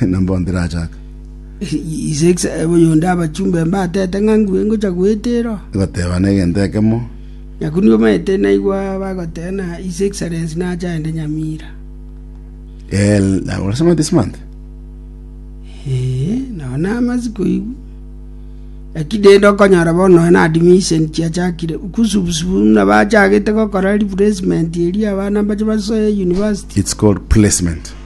na mbono tirachaaka. Oyonde abachumba mbatete ng'a ngure ngocha goetera. Gotebana egento ekemo. Nyaku nigo omanyete naigwa bagoteba ng'a His Excellency nache aende Nyamira. Eh, nabo orasema this month. Eh, nao namasi koigwa. Lakini rende okonyora bono na admission chiachakire kusubusubu muna bachagete gokora replacement eria abana mbache basoe university. It's called placement.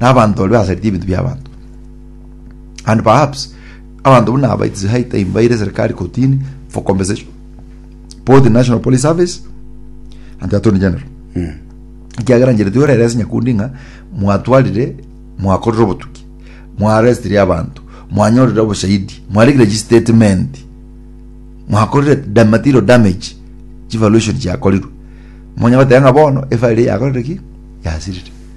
nabanto baria basaritie ebinto bi'abanto. And perhaps abanto buna aba it's high time baire serikali kotini for compensation both in National Police Service and the Attorney General ekiagera njere tiyo reresi nyakundi ng'a mwatwarire mwakorire obotuki mwarestirie abanto mwanyorire oboshahidi mwaregire chistatement mwakorire da- material damage chivaluation chiakorirwe monya goteba ng'a bono efile yakorire ki yasirire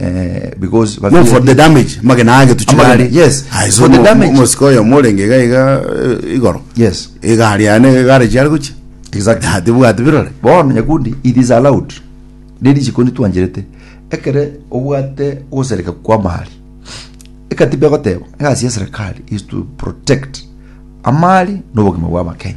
eh, because No, babieri- for the damage, magena age Amagena, tuchigari. yes. Aye, so For the mo- damage. mo- mosika oyo morenge iga iga eh, igoro. yes Egari ane egare chiare gochi. exactly Ati bwati birore. bono nyakundi it is allowed riri chikundi twancherete ekere obwate ogosereka kwa mali ekatiba egoteba egasi ya serikali is to protect amali n'obogima bwa abakenya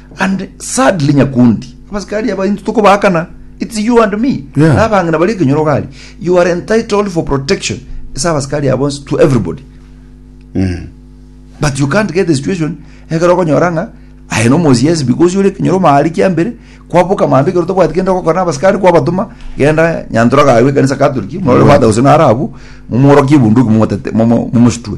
And sadly nyakundi abasikari aba intu tokobaakana it's you and me Yeah. na abang'ina bari ekenyoro gari you are entitled for protection ase abasikari abo bonsi to everybody but you can't get the situation ekero okonyora ng'a aye no mosi yes because yore ekenyoro maari kia mbere kwaboka mambia ekero tobwati kende gokora na abasikari kwabatoma genda nyantora gaye ekanisa katoliki murore father gose narabu mumworokie ebunduki mumotete mumo- mumositwe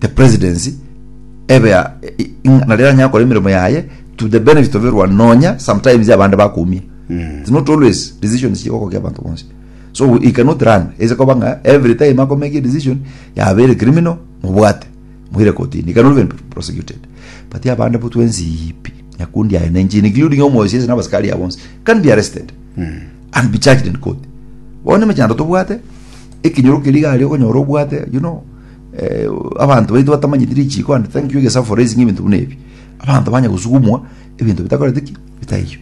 the presidency ebe ya i- i- nari eranyare gokora emeremo yaye to the benefit of everyone nonya sometimes abande bakumia it's not always decisions chigokokia abantu bonsi so we- he cannot run ese koba ng'a every time akomake a decision yabere criminal mobwate moire kotini he cannot even be prosecuted but abande bo twensi ipi nyakundi aye nenchi including omosi ase nabasikari abo bonsi can be arrested and be charged in court bono emechando tobwate ekinyoro keri iga aria okonyora obwate you know Abanto baito batamanyeti richiiko and thank you egesaku for raising ebinto buna ebi. Abanto banya gosugumwa ebinto bitakoreti ki? Bitaiyo.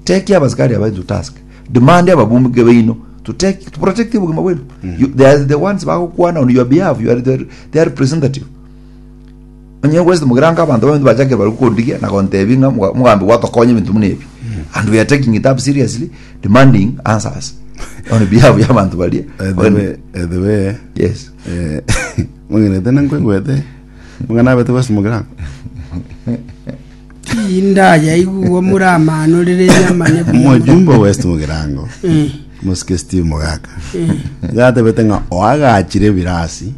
Take abasikari aba into task. Demand ababunge baino to take to protect obogima bwaino. You- They are the ones bagokwana on your behalf. You are their, their representative. Onye ngwesete mogirango abanto baminto bachakire bare gokorigia na gontebia ng'a moga- mogambi gwatokonya ebinto buna ebi and we are taking it up seriously demanding answers on behalf y'abanto baria edewe edewe yes eh, mong'erete na nkwegwete mong'ana abete gwase mogirango Tindayaigwa omure amano rere enyama ne buya. Omojumbe o West Mugirango, Eh, Mosike Steve Mogaka, nigo atebete ng'a oagachire ebirasi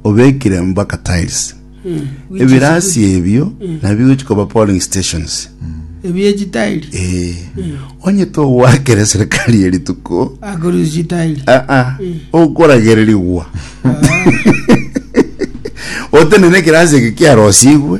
obekire mpaka tiles. eh, which is Ebirasi ebio nabio gochi koba polling stations. good. Ebie chitairi. Eh, onye togwakere serikali ye rituko Akorusi chitairi. ah, ah, okoragererigwa otenene ekirasi eke kiarosigwe